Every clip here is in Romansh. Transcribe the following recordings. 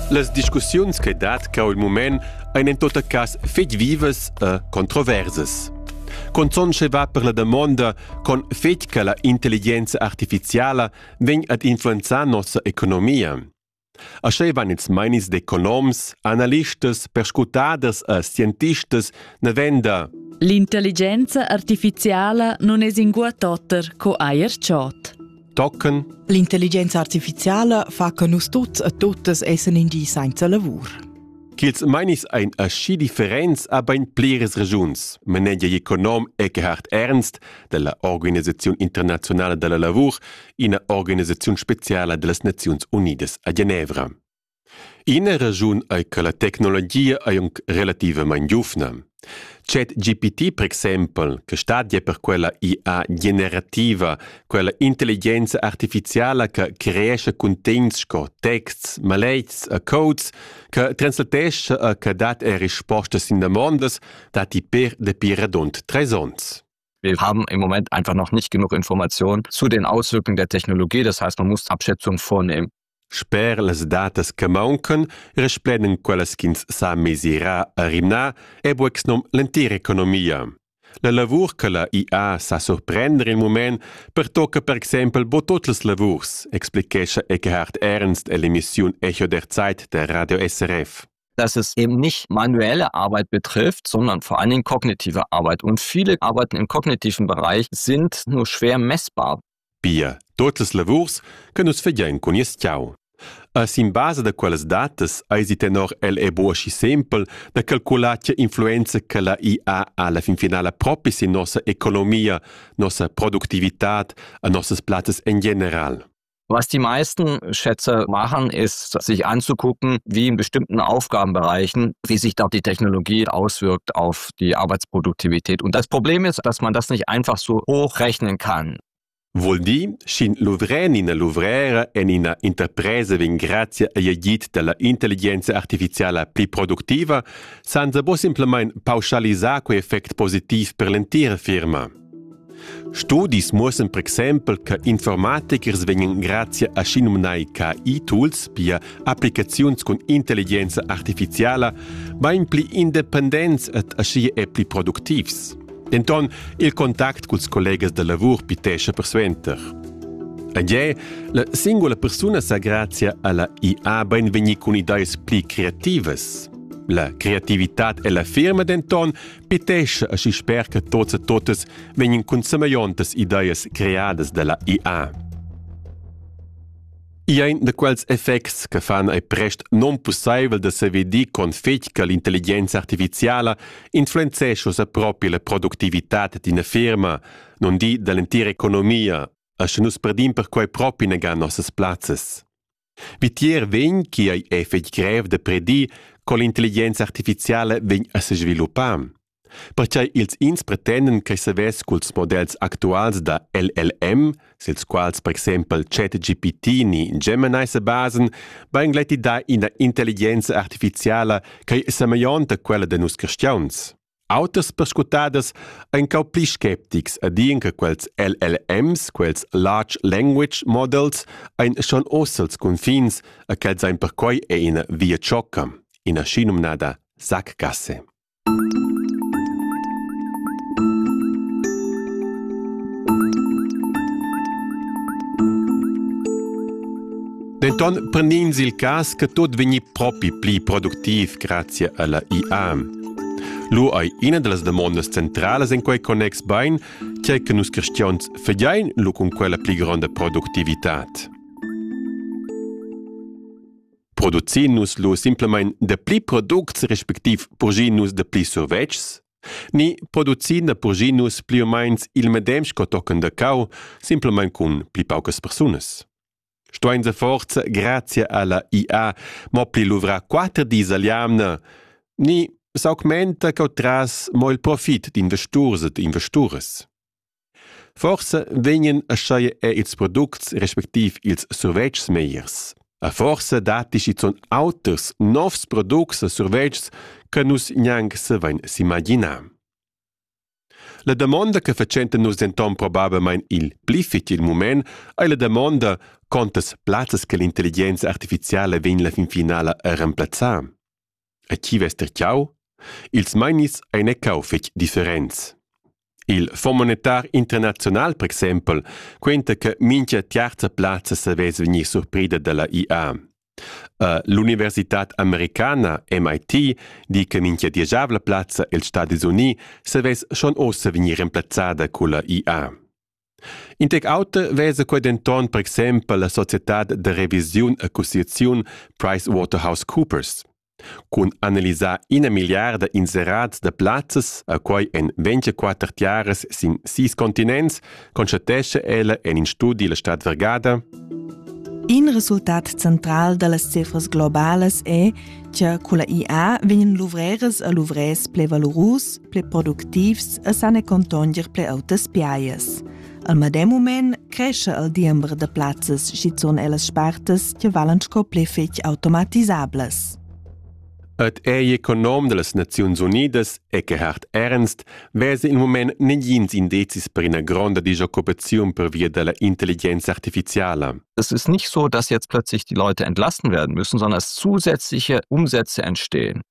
Las discussiuns che dat cau il mument ein en tot cass fetg vivas e controversas. Conzon va per la damonda con fetg che la intelligenza artificiala vegn ad influenzar nossa economia. Ascheivan ils meinis d'economs, analistas, perscrutaders e scientistas navenda L'intelligenza artificiala non es ingua totter co eir chod. tochen. L'intelligenza artificiala fa che nus tuts e totes essen in di senza lavur. Kiels meinis ein aschi differents a bein pliras regiuns, manegia econom Eckhard Ernst della Organisazione Internazionale della Lavur, ina organisazione speciala dellas Naziuns Unidas a Genevra. Ina raschun ei che la tecnologia ei aunc relativamein giuvna. ChatGPT per exempel, che stat ja per quella IA generativa, quella intelligenza artificiala che creescha cuntegns sco texts, maletgs e codes, che translatescha e che dat er rispostas sin damondas, datti per dapi radund treis onns. Wir haben im Moment einfach noch nicht genug Informationen zu den Auswirkungen der Technologie. Das heißt, man muss Abschätzung vornehmen. Sper las datas che mauncan resplendan quellas ch'ins sa mesirar a rimnar è bucs nom l'entira economia. La lavur che la IA sa surprender il mument pertocca per exempel bo tots els lavurs, explichescha Eckhard Ernstell'emissiun Echo der Zeit der Radio SRF. dass es eben nicht manuelle Arbeit betrifft, sondern vor allen Dingen kognitive Arbeit. Und viele Arbeiten im kognitiven Bereich sind nur schwer messbar. pia tot las lavurs che nus fagein cun nies tgau. E sin basa da quellas datas eisi tenor el è buca aschi sempel da calcular tgei influenza che la IA ha alla fin finala propi sin nossa economia, nossa productivitad e nossas plazzas en general. Was die meisten Schätze machen, ist, sich anzugucken, wie in bestimmten Aufgabenbereichen, wie sich da die Technologie auswirkt auf die Arbeitsproduktivität. Und das Problem ist, dass man das nicht einfach so hochrechnen kann. Vuol dir, sch'in luvren ina luvrera en ina interpresa vegn grazia agl agid dalla intelligenza artificiala pli productiva, san se bo simplamain pauschalisar quei effect positiv per l'entira firma. Studis muossan per exempel che informatikers vegnan grazia a schinumnai KI-tools, pia applicaziuns cun intelligenza artificiala, bain pli independents ed aschia e pli productivs. Denton il contact culs collegas da lavur pitescha persuenter. Ed è, la singola persuna sa grazia alla IA bain vegnir cun ideas pli creativas. La creativitad e la firma denton Pitesce aschi sper che tots e totas vegnan cun semegliontas ideas creadas dalla IA. I ein da quels effects che fan ei prest non pusseivel da sevedir con fetg che l'intelligenza artificiala influenzescha sa propi la productivitat d'ina firma, non di dall'entira economia, asche nus perdim perquei propi negan nossas plazzas. Vitier vegn chi ei ei fetg grev da predir co l'intelligenza artificiala vegn a sesviluppar. Pertgei ils ins pretenden che savess culs modells actuals da LLM, sils quals per exempel ChatGPT ni Gemini se basen, va ingletti da ina intelligenza artificiala che è semeianta quella de nus cristians. Auters perscrutaders ein cau pli sceptics e dien che quels LLMs, quels Large Language Models, ein schon oz els confins e quels ein perquei è ina via ciocca, ina schinumnada sackgasse. Denton prend'ins il cass che tot vegni propi pli productiv grazia alla IA. Lu ei ina dallas damondas centralas en quei connex bein, tgei che nus cristians fagein lu cun quella pli gronda productivitad. Producin nus lu simplemein da pli products respektiv purgin nus da pli survetschs? Ni producin da purgin nus pli o meins il medem sco tochen da cau, simplemein cun pli paucas persunas? Stuein se forza grazia alla IA mo pli luvra quater dis al jamna. Ni s'augmenta cau tras mo il profit d'investurs ed investures. Forse vegnen aschaie e ils products respektiv ils survetschs meiers. A forse datti schizun auters novs products e survetschs che nus gnanc se vein s'imaginar. La damonda che fatschenta nus denton probablmein il pli fetg il mument ei la damonda contas plazzas che l'intelligenza artificiala vegn la fin finala a remplazzar. A chi vess terciau? Ils meinis ein ecau fetg differents. Il Fonds monetar internazional, per exempel, quenta che mincha terza plazza savess vegnir surprida dalla IA. L'universitad americana MIT di che mincha dieschavla plazza els Stadis Unii savess schon ossa vegnir remplazzada culla IA. In tec auter vesa quei denton per exempel la societad da revisiun accusiaziun PricewaterhouseCoopers. Cun analisar ina milliarda inserats da plazzas a quai en 24 tiaras sin sis continents, constatescha ella en in studi la Stadt Vergada. In resultat central da las cifras globalas è che con la IA vegnan luvreras a luvrers ple valurus, ple productivs e san e contonger ple autas piaias. Al medem mument crescha il diember da plazzas schizun ellas spartas che valan sco pli fetg automatisablas. Et ei econom dellas Naziuns Unidas e che hart ernst vese il moment negins indezis per ina gronda disoccupaziun per via della intelligenza artificiala. Es ist nicht so, dass jetzt plötzlich die Leute entlassen werden müssen, sondern dass zusätzliche Umsätze entstehen.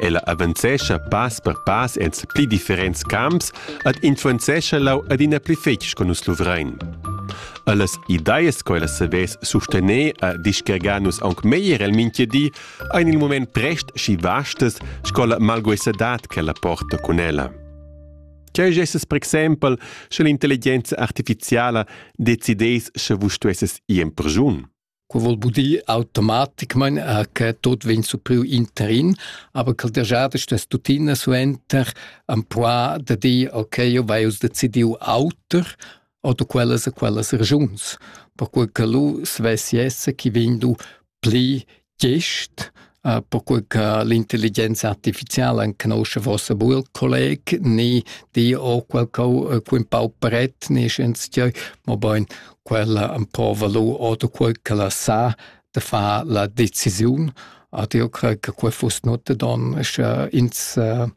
Ella avanzescha pass per pass en pli differents camps ed influenzescha lau adina pli fetg co nus luvrein. Allas ideas che ella savess sustener e discargar nus aunc meglier el mintga di, ein il moment prest schi vastas sco la malguesadad che ella porta cun ella. Cheu gesses per exempel, sche l'intelligenza artificiala decidess sche vus stuesses ir in perschun. Quo voul dir automaticmaing eir che tuot vegn supriu interin, aber ch'el daja destas tuttina suenter ampua da dir okay, eu vai uss decidiu auter oder quellas e quellas ragiuns, percue che lu svess esser chi vegn du pli gest uh, perquei che l'intelligenza artificiala conosce vossa buil colleg ni di o qualco uh, un pau pret ni schens tgei ma bein quella un po valu oder quel che la sa de fa la decisiun ad io crei che quei fuss not don sche ins uh,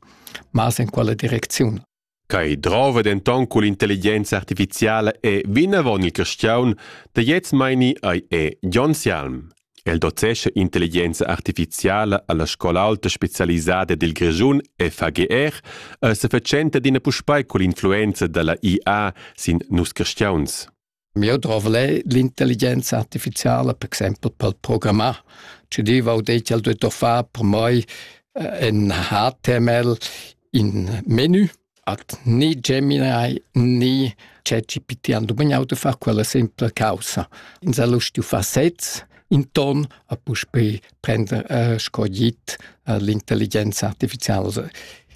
mas in quella direcziun Quai drova denton cull intelligenza artificiala e vinavon il carstgaun da gliez meini ei è Jon Sialm. El docescha intelligenza artificiala alla scola alta specialisada dil Grischun FAGR e sefatschenta d'ina puspei cull influenza dalla IA sin nus carstgauns. Mieu drov al è l'intelligenza artificiala, per exempel pel programmar, che diva ho det ch'el duetta far per mai eh, ün HTML in menu. At ni Gemini ni ChatGPT han dumagnau da far quella simpla causa. Ins ha lust far sezs in ton a puspei prender eh, sco git eh, l'intelligenza artificiala.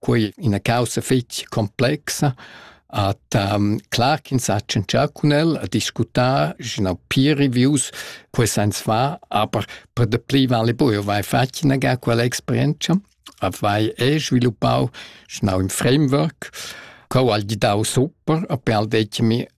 quei ina caussa fetg complexa At um, clar ch'ins ha tschentschà cun el, a discutar, genau peer reviews, quei sens fa, aber per de pli vale bu, eu vai fatg inaga quella experienza, a vai e sviluppau genau im Framework, co al gidau super, a per al detg mi,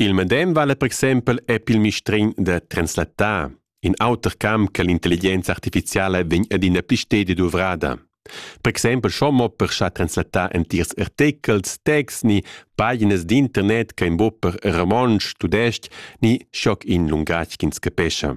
Il medem vala per exempel epp il mistregn da translattar, in auter camp che l'intelligenza artificiala vegn adina pli stedi duvrada. Per exempel schon mo per schar translattar entirs artechels, texts ni paginas d'internet che in bo per romontsch, tudestg ni schoc in lungatg ch'ins capescha.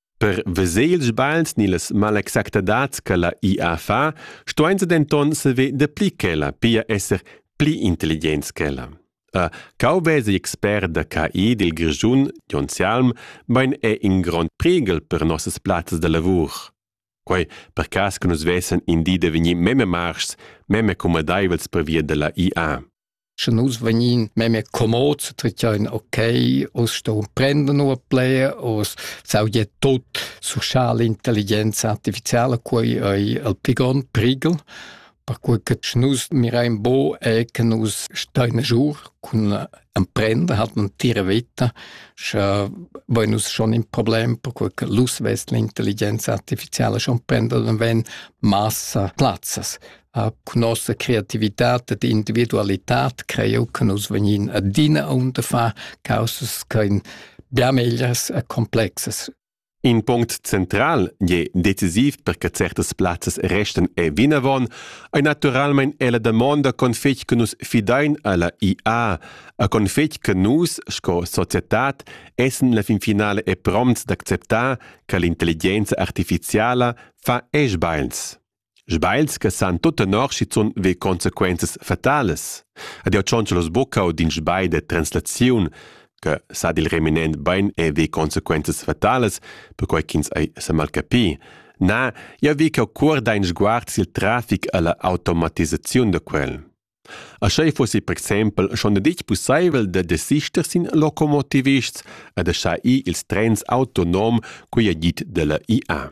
Per veser ils sbagls ni las malexactadads che la IA fa, stuein se denton saver dapli ch'ella, pia esser pli intelligents ch'ella. A cau vesa expert da KI dil Grischun, Jon Sialm, bein è in grond priegel per nossas plazzas da lavur. Quei per cass che nus vessen in di da vegnir meme marschs, meme comodaivels per via della IA. Sche nus vegnin memia comods, tracciain ok, oz ston prendon ua plaja, oz s'audia tut social intelligenza artificiala, quei ei il pli grond prighel, perquei che sche nus mirain buc e che nus stein giu cun emprender, hat man tira vita, sche vein nus schon in problem, perquei che l'us vess l'intelligenza artificiala schon prender, dann vegn massa plazzas. a cun nossa creativitat ed individualitad creu che nus vegnin adina aunta fa causas che in bia meglias e complexas. In punct central je decisiv perche certas plazzas restan e vinavon ei naturalmein è la damonda con fetg che nus fidein alla IA, a con fetg che nus sco societad essen la fin finale e prompts d'acceptar che l'intelligenza artificiala fa esch beils. Sbagls che san tut tenor schizun ve consequenzas fatalas. Ed jau tschontschalos buca u d'in sbagl de translaziun che sa dil reminent bein e ve consequenzas fatalas, perquai ch'ins ei semalcapi. Na, jau vi ch'eu cuorda in sguard sil trafic e la automatisaziun da quel. A schei fossi per exempel schon detg pusseivel da desister sin locomotivists e da schar ir ils trens autonom, quei ha dit dalla IA.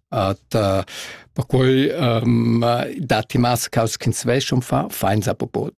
At uh, perquai um, datti mas caus ch'ins veschum fa fainsa popot.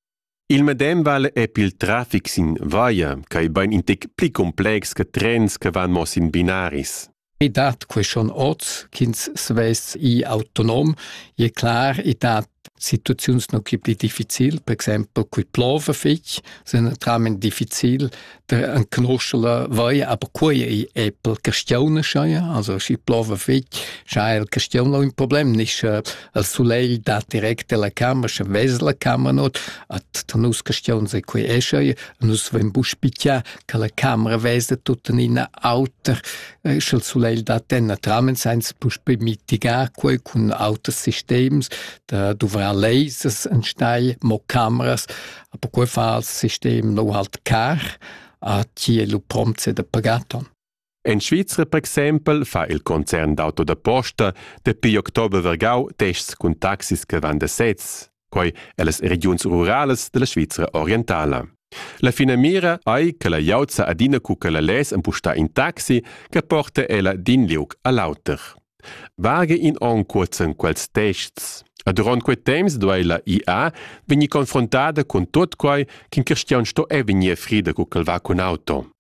Il medem val è pil traffic sin via, quai bain in tec pli complex che trens che van mo sin binaris. I dat que schon oz ch'ins svests i autonom, e clar, i dat Situaziuns nu chi pli difficil, per exaimpel cui plova fich, sun naturalmaing difficil da canuscher vai, aber quai ei eppel castionescha ja, also schi plova fich, scha ha il castion ün problem, nisch il sulegl dà direct dalla cama, scha vez la cama not, at da nus castions ei quai escha ja, nus vain bu spichà che la camera veza tuttenina auter, e sch'el sulegl dat denna tramen sainz puspe mitigar quei cun auters sistems da duvrar lasers en steil mo cameras aber quei fa als sistem no halt car a tie lu promze de pagaton En Svizra per exempel fa il concern d'auto da posta dapi october vergau tests cun taxis che van da sez. quai ellas regiuns ruralas della Svizra orientala. La finamira ei che la glieud sa adina cu che la less empustar in taxi che porta ella d'in liug all'auter. Vage in onn curzen quels tests. A durant quei temps duei la IA vegnir confrontada cun tot quai ch'in cristian sto e vegnir frida cu ch'el va cun auto.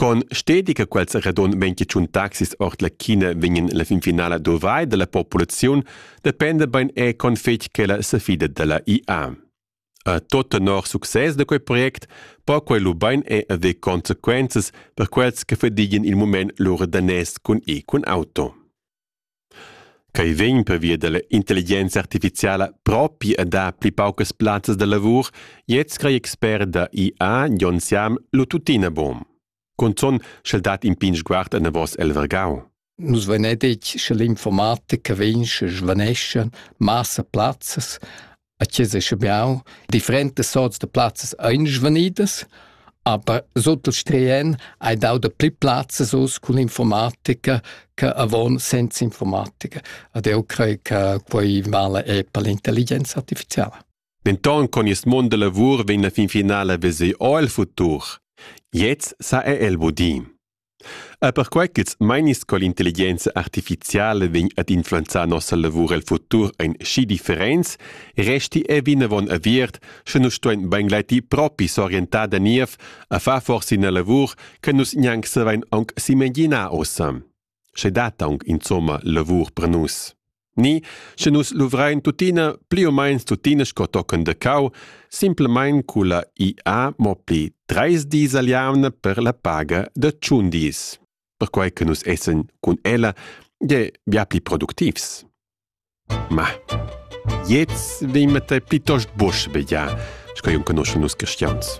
Con stedi che quels radon vegn tschun taxis ord la China vegnan la fin finala dovai dalla populaziun dependa bein è con fetg che la safida dalla IA. A tot tenor success da quei project po quei lu bein è haver consequenzas per quels che fadigien il mument lur danès cun e cun auto. Quei vegn pervia dalla intelligenza artificiala propi a dar pli paucas plazzas da lavur, gliez screi expert da IA Jon Siam lu tuttina buc. Cunzun sch'el dat in pign sguard anavos el vargau. Nus vein detg che l'informatica vegn sche svaneschan massa plazzas, A chiesa Schabiau differentas sorts da plazzas ein svanidas, aber sut il Strian hai dau dapli plazzas uss cun informatica che avon senza informatica. Ed eu crei che quei vala è per l'intelligenza artificiala. Denton con il mond da lavur vegn la fin finala veser o il futur. Jetzt sa è el budin. Er perquai ch'ils meinis co l'intelligenza artificiala vegn ad influenzar nossa lavur el futur ein schi differents, resti ei vinavon aviert, sche nus stuein beingleiti propi s'orientar da niev a far forsa ina lavur che nus gnanc savein aunc s'imaginar ussa. Sche dat aunc insomma lavur per nus. Ni, sche nus luvrein tuttina pli u meins tuttina sco tochen de cau, simplemein culla IA mo pli treis dis al jamna per la paga de tschun dis, perquei che nus essen cun ella je bia pli productivs. Ma, jetzt vimete plitost busch begia, sco jun conosce nus cristians.